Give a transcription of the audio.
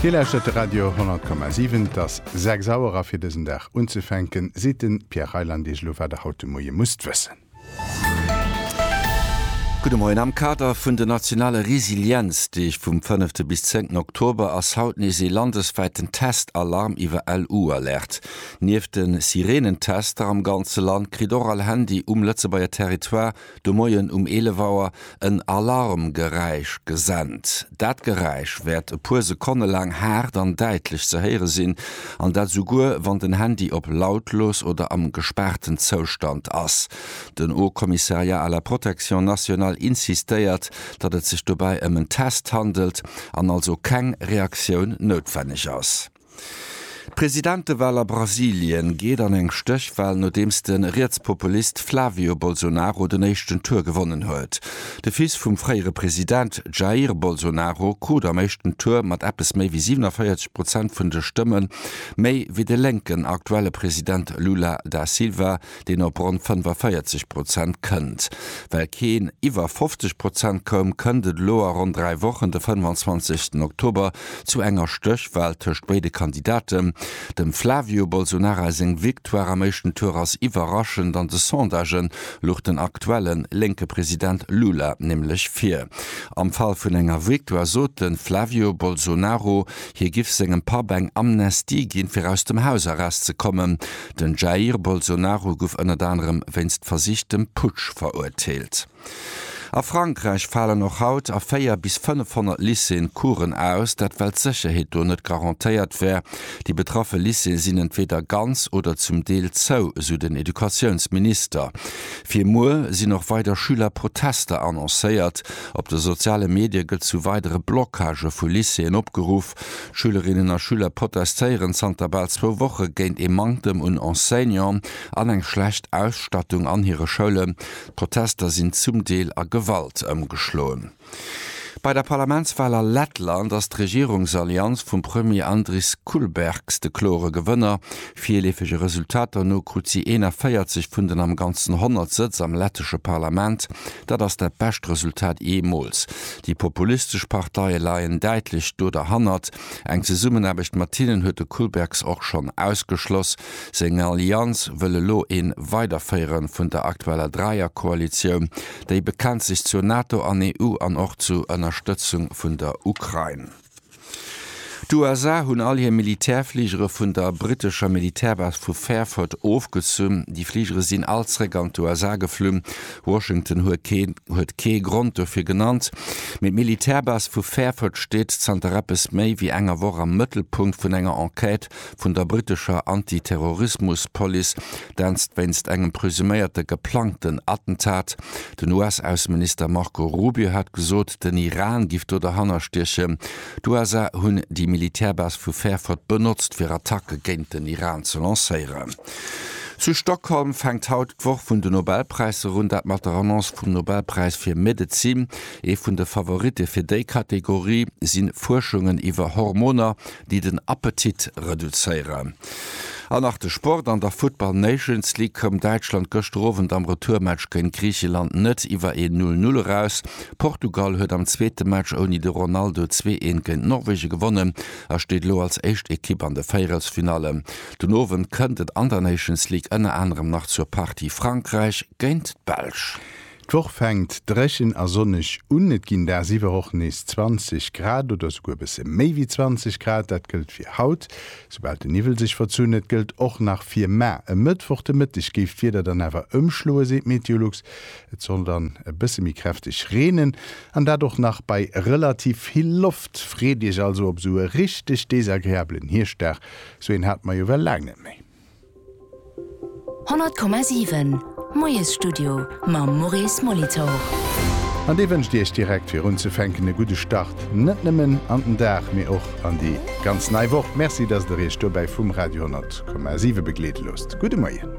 Dir lauschtert de Radio 10,7. Et ass 6 Auer a fir dësen Dag unzefänken, seet de Pierre Reyland Iech elo, wat Der haut de Moie musst wëssen. Gudde Moien. Am Kader vun den nationale Resilienzdeeg vum fënnefte bis zéngten Oktober ass haut nees ee landeswäiten Test-Alarm iwwer LU-Alerte. Nieft de Sireenentester am ganze Land kritt och all Handy um Lëtzebuerger Territoire de Moien um 11 Auer en Alarmgeräisch gesent. Dat Geräisch wäert e puer Sekonne laang haart an däitlech ze héiere sinn, an dat esouguer wann den Handy op lautlos oder am gespaarten Zoustand ass. Den Haut Commissariat à la Protection Nationale insistéiert, datt et sech dobäi ëm en Test handelt an also keng Reaktioun noutwenneg ass. D'Presidentewal a Brasilien geet an eng Stéchwal, nodeems de Rietspopulist Flavio Bolsonaro den éischten Tour gewonnen huet. De Fils vum fréiere President Jair Bolsonaro krut am éischten Tour mat eppes méi wéi 47 Prozent vun de Stëmme méi wéi de lénken aktuelle President Lula da Silva, deen op ronn 45 Prozent kënnt. Well keen iwwer 50 Prozent koum, kënnt et elo a ronn dräi Wochen, de 25. Oktober, zu enger Stéchwal tëscht béide Kandidaten. Dem Flavio Bolsonara seng Victoire am éischten Tour ass iwwerraschend. An de Sondagen luch den aktuelle lénke President Lula nämlech vir. Am Fall vun enger Victoire sot de Flavio Bolsonaro, hie giff sengem Papp eng Amnestie ginn, fir aus dem Hausarrest ze kommen. Den Jair Bolsonaro guff ënnert anerem wéinst versichtem Putsch verurteelt. A Frankräich falen och haut a 4 bis 500 Lycéeën Coursen aus, dat well d'Sécherheet do net garantéiert wär. Déi betraffe Lycéeë sinn entweeder ganz oder zum Deel zou, esou den Educatiounsminister. Fir muer sinn och weider Schülerprotester annoncéiert. Op de soziale Medie gëtt zu weidere Blockage vu Lycéeën opgeruff. Schülerinnen a Schüler protestéieren zanter bal zwou Woche géint ee Manktem un Enseignanten an eng schlecht Ausstattung an hire Schoulen. D'Protester sinn zum Deel a Gewalt ëmgeschloen. Bei der Parlamentswal a Lettland ass d'Regierungsallianz vum Premier Andris Kulbergs de klore Gewënner. Virleefege Resultater no krut si 41 vun den am Ganzen 100 Sëtz am lettesche Parlament. Dat ass dat bescht Resultat jeemools. Déi populistesch Parteie leien däitlech do derhannert. Eng Zesummenaarbecht mat hinnen huet de Kulbergs och schonn ausgeschloss. Seng Allianz wëll elo ee Weiderféiere vun der aktueller Dräierkoalitioun. Déi bekennt sech zur NATO an EU an och zu Ënnerstëtzung vun der Ukrain. D'USA hunn all hir Militärfligere vun der brittescher Militärbase vu Fairford ofgezunn. Déi Fligere sinn all zréck an d'USA geflunn. Washington huet kee Grond dofir genannt, mee d'Militärbase vu Fairford steet zanter eppes méi wéi enger Woch am Mëttelpunkt vun enger Enquête vun der brittescher Anti-Terrorismus-Police, dat wéinst engem presuméierte geplangten Attentat Den US-Ausseminister Marco Rubio hat gesot, den Iran giff do derhanner stiechen. D'USA hunn déi Militärbase vu Fairford benotzt, fir Attacke géint den Iran ze lancéieren. Zu Stockholm fänkt haut d'Woch vun de Nobelpräisser un, dat mat der Annonce vum Nobelpräis fir Medezin. Ee vun de Favoritte fir déi Kategorie si Fuerschungen iwwer Hormoner, déi den Appetit reduzéieren an nach de Sport. An der Football Nations League koum Däitschland gëschter Owend am Retourmatch géint Griicheland net iwwer een Null-Null eraus. Portugal huet am zweete Match ouni de Ronaldo zwee Eent géint Norwegen gewonnen a steet elo als éischt Ekipp an de Véierelsfinallen. Den Owend kënnt et an der Nations League ënner anerem nach zur Partie Frankräich géint d'Belsch. D'Woch fänkt dréchen a sonneg un, et ginn dagsiwwer och nees 20 Grad oder souguer e bësse méi wéi 20 Grad. Dat gëllt fir haut, soubal de Niwwel sech verzunn. Et gëllt och nach fir ma. E Mëttwoch de Mëtteg géif d'Wieder dann awer ëmschloen, seet Meteolux. Et soll dann e bësse méi kräfteg reenen, an dat och nach bei relativ vill Loft. Freet Iech also op esou e richteg desagreabelen Hierschtdag. Esou een hate mer jo well laang net méi. 100,7 Moiesstudio mam Maurice Molitor. An dee wënscht Iech direkt fir unzefänken e gudde Start, net nëmmen an den Dag, mee och an déi ganz nei Woch. Merci, dass Der Iech dobäi vum Radio 10,7 begleede loosst. Gudde Moien.